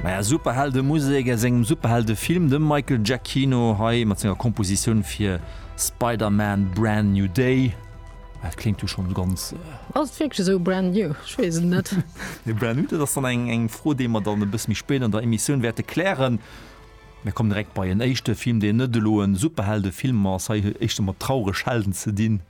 Maja, Superheldemusek aus engem Superheldefilm, de Michael Giacchino hei mat senger Kompositioun fir Spider-Man Brand New Day. Dat kléngt jo schonn ganz. Ass et wierklech esou brand new? Ech weess et net. Nee, brand new, dat ass dann eng eng Fro, déi mer dann e bësse méi spéit an der Emissioun wäerte klären. Mir kommen direkt bei en éischte Film, deen net elo e Superheldefilm ass. Hei éischter mat traureg Helden ze dinn.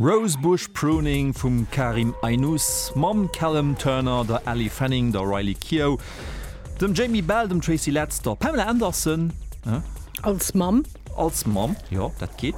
Rose Bush Pruning vum Karim Aynous, mam Callum Turner, der Ellie Fanning, der Riley Keough, dem Jamie Bell, dem Tracy Letts, der Pamela Anderson, ë. Als Mamm. Als Mamm, jo, dat geet.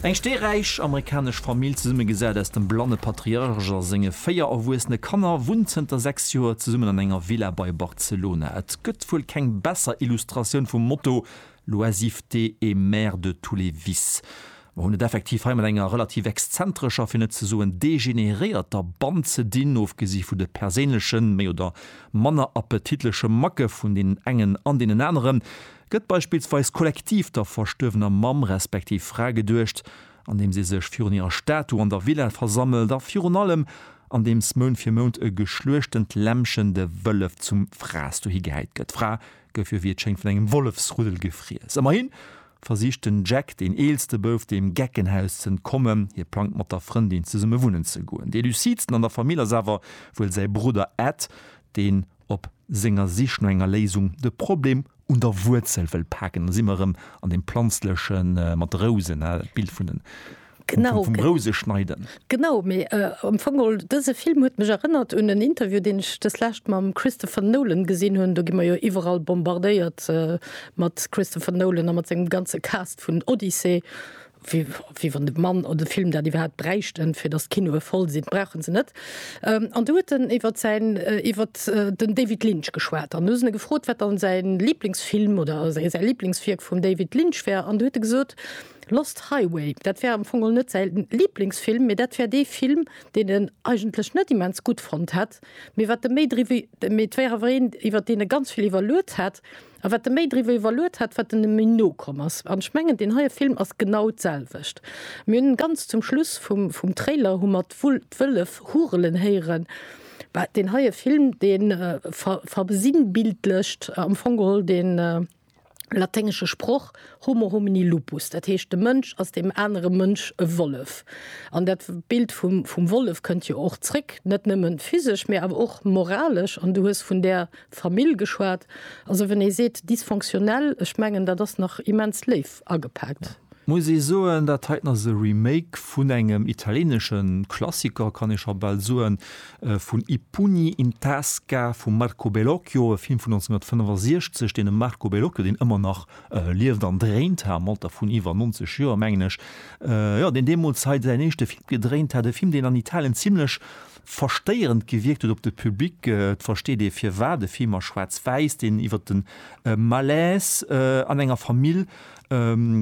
Eng steeräich amerikanesch Famill, zesummegesat aus dem blanne Patriarch a senge véier erwuessene Kanner, wunnt zënter sechs Joer zesummen an enger Villa bei Barcelona. Et gëtt wuel keng besser Illustratioun vum Motto L'oisiveté est mère de tous les vices. Mer hunn et effektiv hei mat enger relativ exzentrescher, fir net ze soen degeneréierter Band ze dinn, ofgesi vu de perséinlechen, méi oder manner appetitleche Macke vun deenen engen an deenen aneren, gëtt beispillsweis kollektiv der verstuerwener Mamm respektiv Fra geduecht, andeems ee sech virun hirer Statu an der Villa versammelt a virun allem andeems Mount fir Mount e geschluechtend Lämmchen, de Wëllef, zum Fraess dohi gehäit gëtt. Fra gouf jo wéi et schéngt vun engem Wollefsruddel gefriess. Ëmmerhi versicht den Jack, deen eelste Bouf, deem Geckenhaus ze entkommen. Hie plangt mat der Frëndin zesumme wunnen ze goen. Dee lucidsten an der Famill ass awer wuel säi Brudder Ed, deen op senger Sich no enger Léisung de Problem un der Wuerzel wëll paken. Da si mer erëm an deem Planzleche mat de Rousen, Bild vun den Genau, vum Rouse schneiden. Genau, mee am Fong mol dëse Film huet mech erënnert un en Interview, deen ech dës Lescht mam Christopher Nolan gesinn hunn. Do gi mer jo iwwerall bombardéiert mat Christopher Nolan a mat sengem ganze Cast vun Odyssey, wéi wéi wann de Mann oder de Film dat iwwerhaapt bräichten, fir datt d'Kinoe voll sinn. Brauche se net. An do huet en iwwert säin, iwwert den David Lynch geschwat. An hu se e gefrot, wat dann säi Liblingsfilm oder säi Liblingswierk vum David Lynch wär. An do huet e gesot, Lost Highway, dat wär am Fong net säi Liblingsfilm, mee dat wär dee Film, deen en eigentlech net immens gutt fonnt hätt, mee wat e méi driwwer, mee et wär awer een, iwwer deen e ganz vill iwwerluet hätt, a wat e méi driwwer iwwerluet hätt, wat en e méi no komm ass. An ech mengen, deen heie Film ass genau d'selwecht. Mir hunn ganz zum Schluss vum Trailer hu mer d'Wëllef hurelen héieren. Deen heie Film, dee versinnbildlecht am Fong geholl dee. laténgesche Sproch Homo homini lupus, dat heescht de Mënsch ass deem anere Mënsch e Wollef. An dat Bild vum Wollef kënnt jo och zréck, net nëmmen physesch, mä awer och moralesch. An du hues vun där Famill geschwat. Also, wann ee seet dysfonctionnel, ech mengen, dat ass nach immens léif. agepaakt. Muss ee soen, dat heiten ass e Remake vun engem italienesche Klassiker, kann ee scho bal soen, vun I pugni in tasca vum Marco Bellocchio, e Film vun 1965, deen dem Marco Bellocchio, deen ëmmer nach lieft an dréint, ha am Alter vun iwwer 90 Joer, mengen ech, jo, deen deemools hei säin éischte Film gedréint hat, e Film, deen an Italien zimlech verstéierend gewierkt huet op de Public. Et versteet ee firwat, e Film a schwaarz-wäiss, deen iwwer de Malaise an enger Famill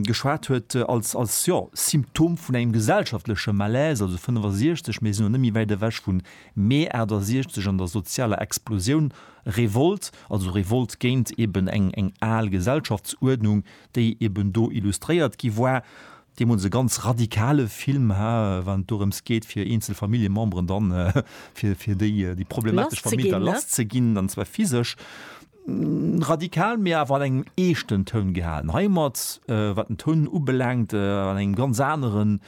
geschwat huet, als, als, jo, Symptom vun engem gesellschaftleche Malaise, also 65, mir sinn elo net méi wäit ewech vu Mee 68 an der sozialer Explosioun, Revolt, also Revolt géint eben eng, eng al Gesellschaftsuerdnung, déi eben do illustréiert gi war. Deemools e ganz radikale Film ha, wann et dorëms geet, fir eenzel Familljememberen dann, fir, fir déi, déi problematesch Famill da lass ze ginn, an zwar physesch. Radikal, mee awer an engem eeschten Toun gehalen. Hei hu mer et, wat den Toun ubelaangt, an engem ganz anere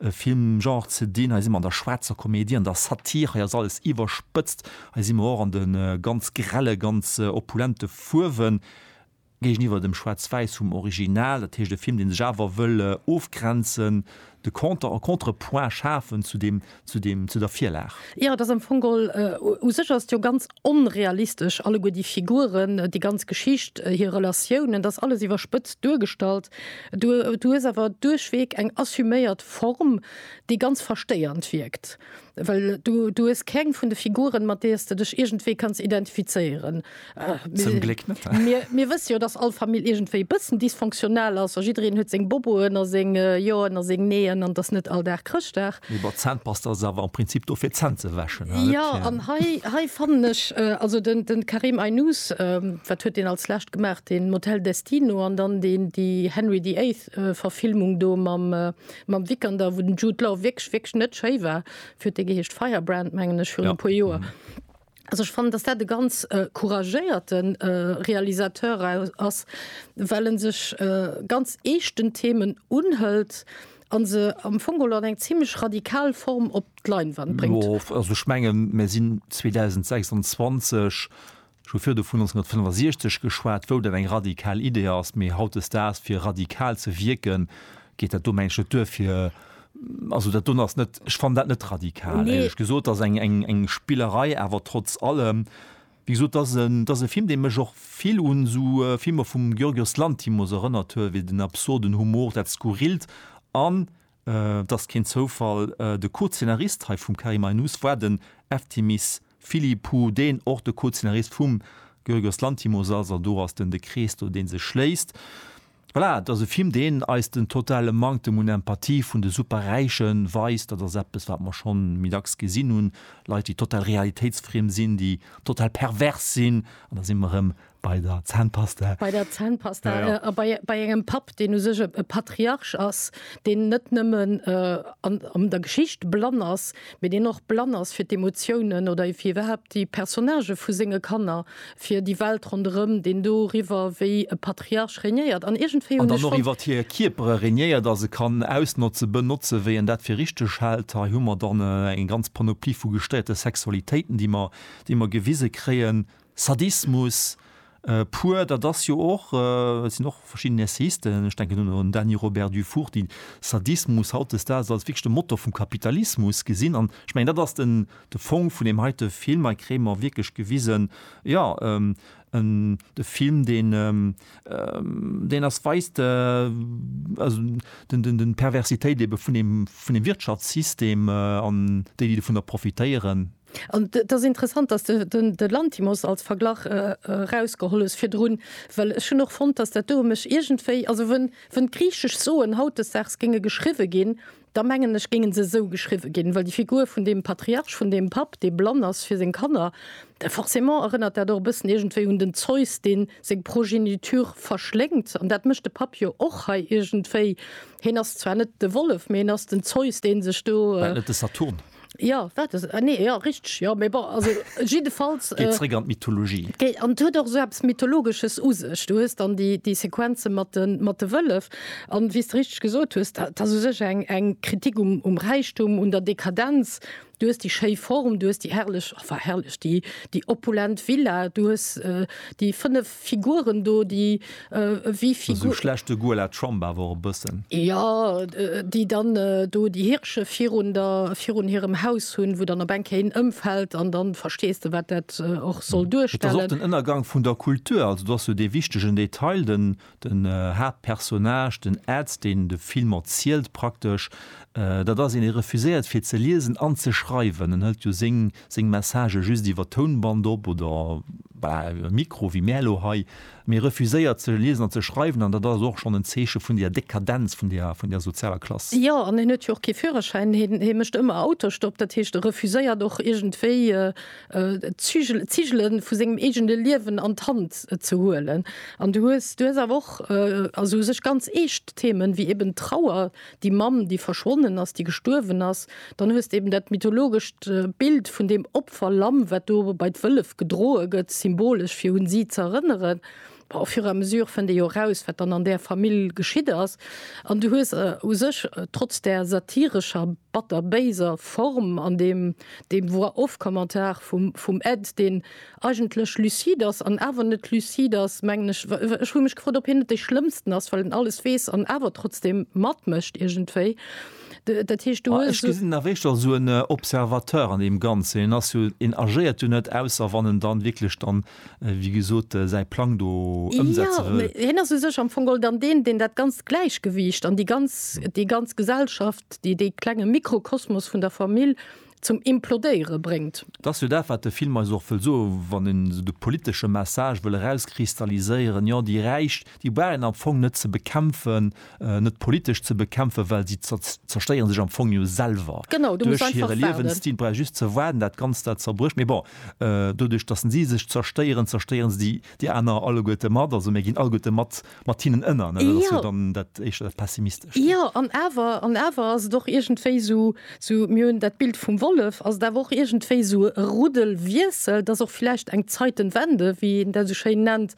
Filmgenre ze dinn. Hei si mer an der schwaarzer Komedie, an der Satir. Hei ass alles iwwerspëtzt. Hei si mer och an de ganz grelle, ganz opulente Fuerwen. Géigeniwwer dem Schwaarz-Wäiss vum Original, dat heescht e Film, dee sech awer wëll ofgrenzen, de Conter, e Contrepoint schafen zu deem, zu deem, zu der Virlag. Jo, et ass am Fong geholl, u sech ass et jo ganz onrealistesch, alleguer déi Figuren, déi ganz Geschicht, hir Relatiounen, et ass alles iwwerspëtzt duergestallt. Du, du hues awer duerchweg eng assuméiert Form, déi ganz verstéiernd wierkt. Well du, du hues keng vun de Figuren, mat deer s de dech iergendwéi kanns identifizéieren. Zum Gléck net. Mir, mir wësse jo, dass all Famill iergendwéi e bëssen dysfonctionnel ass a jiddereen huet seng Boboen a seng Joen a seng Neeën an dass net all Dag Chrëschtdag. Mee bon, d'Zännpasta ass awer am Prinzip do fir d'Zänn ze wäschen, oder? Jo, an hei, hei fannen ech, also den, den Karim Aynous, wat huet deen als lescht gemaach, den Motel Destino an dann deen, déi Henry the Eighth Verfilmung do mam, Mam Vikander, wou den Jude Law wierklech, wierklech net schéi war, wéi huet dee geheescht, Firebrand mengen ech, virun e puer Joer. Also ech fannen, datt dat e ganz couragéierte Realisateur ass, well e sech ganz eeschten Themen unhëlt a se am Fong geholl an eng zimlech radikal Form op d'Leinwand bréngt. Jo, also ech mengen, mir sinn 2026, Scho virdu vun 1965 geschwat, wou dat eng radikal Idee ass, mee hautdesdaags, fir radikal ze wierken, geet dat do, mengen ech, net duer, fir, also dat do ass net, ech fannen dat net radikal, éierlech gesot. Ass eng Spillerei, awer trotz allem, wéi gesot, et ass en, et ass e Film, dee mech och vill un esou Filmer vum Yorgos Lanthimos erënnert huet, wéi den absurden Humor, dat Skurrilt an Et ass keen Zoufall, de Co-Zeenarist hei vum Karim Aynous war den Eftimis Philippou, deen och de Co-Zeenarist vum Giorgos Lanthimos ass. Also do ass den de Krees do dee sech schléisst. Voilà, et ass e Film deen eis den totale Manktem un Empathie vun de Superräiche weist. Dat ass eppes wat mer schonn méi dacks gesinn hunn, Leit déi total realitéitsfriem sinn, déi total pervers sinn an da si mer erëm Bei der Zännpasta. Bei der Zännpasta. Ja, ja. A bei, bei engem Papp, deen u sech e, e Patriarch ass, deen net nëmmen äh, an, an der Geschicht blann ass, mee deen och blann ass fir d'Emotiounen oder fir iwwerhaapt déi Personnagë vu senge Kanner, fir déi Welt ronderëm, deen doriwwer wéi e Patriarch regnéiert. An iergendwéi hunn ech. An dann och iwwer hir Kierpere regnéiert a se kann ausnotzen, benotzen, wéi en dat fir richteg hält. Hei hu mer dann eng ganz Panoplie vu gestéierte Sexualitéiten, déi mer, déi mer gewise kréien. Sadismus pur, dat ass jo och, et sinn och verschidden Essayisten, ech denken un den Dany Robert Dufour, déi Sadismus hautdesdaags als wierklech de Motor vum Kapitalismus gesinn. An ech mengen, dat ass den, de Fong vun deem heite Film. Hei kréie mer wierklech gewisen, jo, en, e Film, deen, deen eis weist, also den, den, d'Perversitéit ebe vun deem, vun deem Wirtschaftssystem an déi, déi dovunner profitéieren. An et ass interessant, dass de de Lanthimos als Verglach erausgeholl hues virdrun, well ech hunn och fonnt, dass dat do mech iergendwéi, also wou wou d'griichesch Soen hautdesdaags géinge geschriwwe ginn, da mengen ech géinge se esou geschriwwe ginn, well déi Figur vun deem Patriarch, vun deem Papp, dee blann ass fir seng Kanner, forcément erënnert dat och e bëssen iergendwéi un den Zeus, dee seng Progeniture verschléngt. An dat mécht de Papp jo och hei iergendwéi, hien ass zwar net de Wollef, mee hien ass den Zeus, dee sech do. War et net de Saturn? Ja wat ass ah, nee, ja richteg ja, mee bon also jiddefalls Geet äh, zréck an d'Mythologie. Géi- an huet och so eppes mythologesches u sech. Du hues dann déi, déi Sequenze mat de mat de Wëllef an wéi s de richteg gesot hues, dat ass u sech eng eng Kritik um um Räichtum, un der Dekadenz. Du hues déi schéi Form, du hues déi herrlech, enfin herrlech, déi déi opulent Villa, du hues äh, déi fënnef Figuren do déi ewéi Figur. Esou schlecht de Goût à la Trump awer och e bëssen. Jo, déi dann do déi Hirsche virun der, virun hirem Haus hunn, wou dann op eng Kéier een ëmfält an dann verstees de wat dat och soll duerstellen. Et ass och den Ënnergang vun der Kultur. Also do ass jo dee wichtegen Detail, den den Haaptpersonnage, den Ed, deen de Film erzielt praktesch, dat ass een, dee refuséiert fir ze liesen an ze schreiwen. En hëlt jo seng seng Messagë just iwwer Tounband op oder, voilà, iwwer Mikro, wéi mär elo hei, mee refuséiert ze liesen an ze schreiwen, an dat ass och schonn en Zeeche vun där Dekadenz vun där, vun där sozialer Klass. Jo, an hien huet jo och kee Führerschäin, hien, hie mécht ëmmer Autostopp, dat heescht, e refuséiert och iergendwéi d'Zügel, d'Zigele vu sengem eegene Liewen an d'Hand ze huelen. An du hues, du hues awer och, also u sech ganz eescht Themen, wéi eben d'Trauer, déi Mamm, déi verschwonnen ass, déi gestuerwen ass, dann hues de eben dat mythologescht Bild vun deem Opferlamm, wat do bei d'Wëllef gedroe gëtt, symbolesch, fir un si z'erënneren. Bon, au fur et à mesure fënnt ee jo eraus, wat dann an där Famill geschitt ass. An du hues u sech, trotz där satirescher, batter-béiser Form an deem, deem Voix-off-Kommentar vum, vum Ed, deen, eigentlech lucide ass an awer net lucide ass, mengen ech. Ech hu mech gefrot, ob hien net dee Schlëmmsten ass, well en alles weess an awer trotzdeem matmécht iergendwéi. Dat heescht, du hues esou. Ech gesinn awer éischter esou en Observateur an deem Ganzen. Hien ass jo, hien agéiert jo net, ausser wann en dann wierklech dann, wéi gesot, säi Plang do ëmsetze wëll. Jo, hien ass u sech am Fong geholl dann deen, deen dat ganzt Gläichgewiicht an déi ganz, déi ganz Gesellschaft, dee klenge Mikrokosmos vun der Famill zum Implodéiere bréngt. Et ass jo dat, wat de Film eis och wëll soen, wann een esou de politesche Message wëll erauskristalliséieren, jo, déi Räich, déi brauch een am Fong net ze bekämpfen, net politesch ze bekämpfen, well si zerstéiere sech am Fong jo selwer duerch hire Liewensstil. Brauch ee just ze waarden, dat Ganzt, dat zerbrécht. Mee bon, doduerch, datt si sech zerstéieren, zerstéiere se déi aner alleguerte mat. Also mir ginn alleguerte mat Mat hinnen ënner, ne? Dat ass jo dann dat éischter dat Pessimistescht. Jo, an awer, an awer ass et och iergendwéi esou, esou, mir hunn dat Bild vum Wollef, ass et awer och iergendwéi esou e Ruddelwiessel, et ass och vläicht eng Zeitenwende, wéi een dat esou schéin nennt.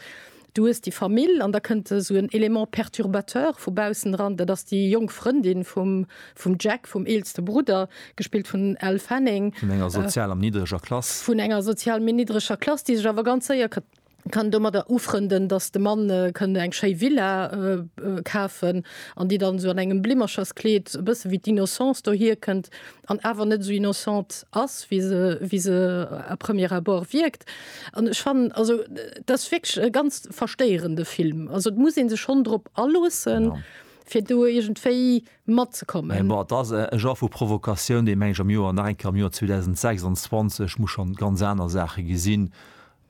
Du hues déi Famill an da kënnt esou en Element perturbateur vu baussen eran, dat ass déi jonk Frëndin vum, vum Jack, vum eelste Brudder, gespillt vun Elle Fanning. Vun enger sozial am niddreger Klass. Vun enger sozial méi niddreger Klass, déi sech awer ganz séier. kann domadder ufrënden, dass de Mann kënnt eng schéi Villa kafen, an déi dann esou an engem Blimmercherskleed e bësse wéi d'Innocence dohier kënnt an awer net esou innocente ass, wéi se, wéi se à premier abord wierkt. An ech fannen, also et ass wierklech e ganz verstéierende Film. Also et muss ee sech schonn drop aloosse fir do iergendwéi matzekommen. Mä bon, et ass e Genre vu Provokatioun, dee, meng ech, am Joer, nach eng Kéier am Joer 2026, muss schonn ganz aner Saache gesinn.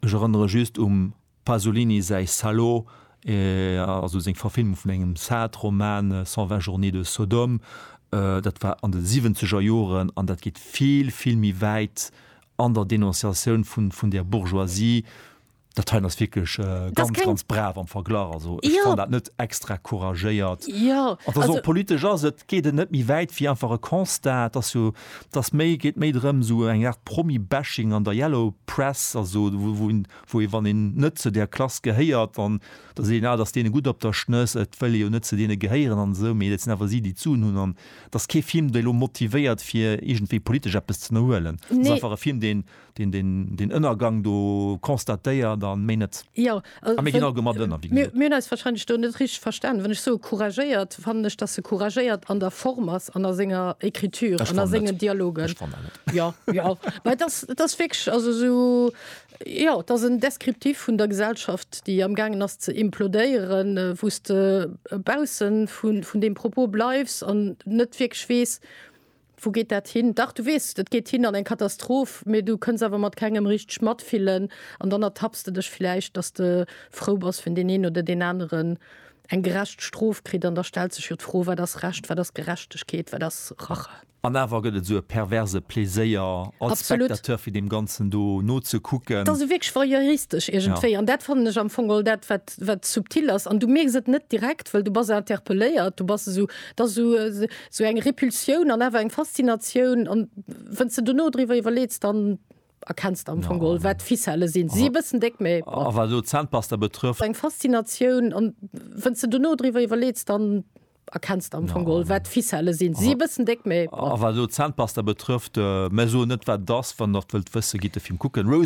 Ech erënnere just um Pasolini säi Salo, also seng Verfilmung vun engem Sartre-Roman, Cent vingt journées de Sodome. Dat war an de siwwenzeger Joren an dat geet vill, vill méi wäit an der Denonciatioun vun där Bourgeoisie. Dat heien ass wierklech ganz, ganz brav am Verglach. Also ech fannen dat net extra couragéiert. An et ass och politesch, et geet net méi wäit wéi einfach e Constat. Dass méi geet méi drëm esou eng Art Promi-Bashing an der Yellow Press, also wou een, wou ee wann een net zu där Klass gehéiert, dann da seet een, ah, dat ass deene gutt op der Schnëss, et wëll ee jo net zu deene gehéieren an esou, mee dat sinn awer si déi d'Suen hunn an et ass kee Film dee lo motivéiert fir iergendwéi politesch eppes z'ënnerhuelen. Et ass einfach e Film deen. deen Ënnergang do constatéiert a méi net. Jo, also, a mir ginn all gemat ënner, wéi gesot. Mir hunn eis wahrscheinlech do net richteg verstanen. Wann ech soe couragéiert, fannen ech, datt e couragéiert an der Form ass an a senger Écriture an a sengen Dialogen. Ech fanne net. Jo, jo. Mä et ass, et ass wierklech, also esou, jo, et ass en Descriptif vun der Gesellschaft, déi amgaangen ass ze implodéieren, wou s de bausse vun deem Propos bleifs an net wierklech weess, Wou geet dat hin? Dach, du weess, dat geet hin an eng Katastroph, mee du kënns awer mat kengem richteg matfillen an dann ertapps de dech vläicht, dass de frou bass, wenn deen een oder deen aneren eng gerecht Strof kritt. An da stellt sech jo d'Fro, Wat ass Recht? Wat ass Gerechtegkeet? Wat ass Rache? An awer gëtt et esou e perverse Pleséier als Spectateur, fir deem Ganzen do nozekucken. Et ass wierklech voyeuristesch iergendwéi. An dat fannen ech am Fong och dat, wat wat subtil ass an du mierks et net direkt, well du bass interpelléiert, du bass esou, et ass esou esou eng Repulsioun an awer eng Faszinatioun an wenn's de dono driwwer iwwerleets, dann erkenns de am Fong geholl wat d'Ficelle sinn, se si e bëssen déck, mee bon. A wat elo d'Zahnpasta betrëfft. Eng Faszinatioun an wenn's de dono driwwer iwwerleets, dann erkenns de am Fong geholl wat d'Ficelle sinn, se si e bëssen déck, mee bon. A wat elo d'Zahnpasta betrëfft, mä soen net wat et ass, wann der et wëllt wëssen, gitt de Film kucken.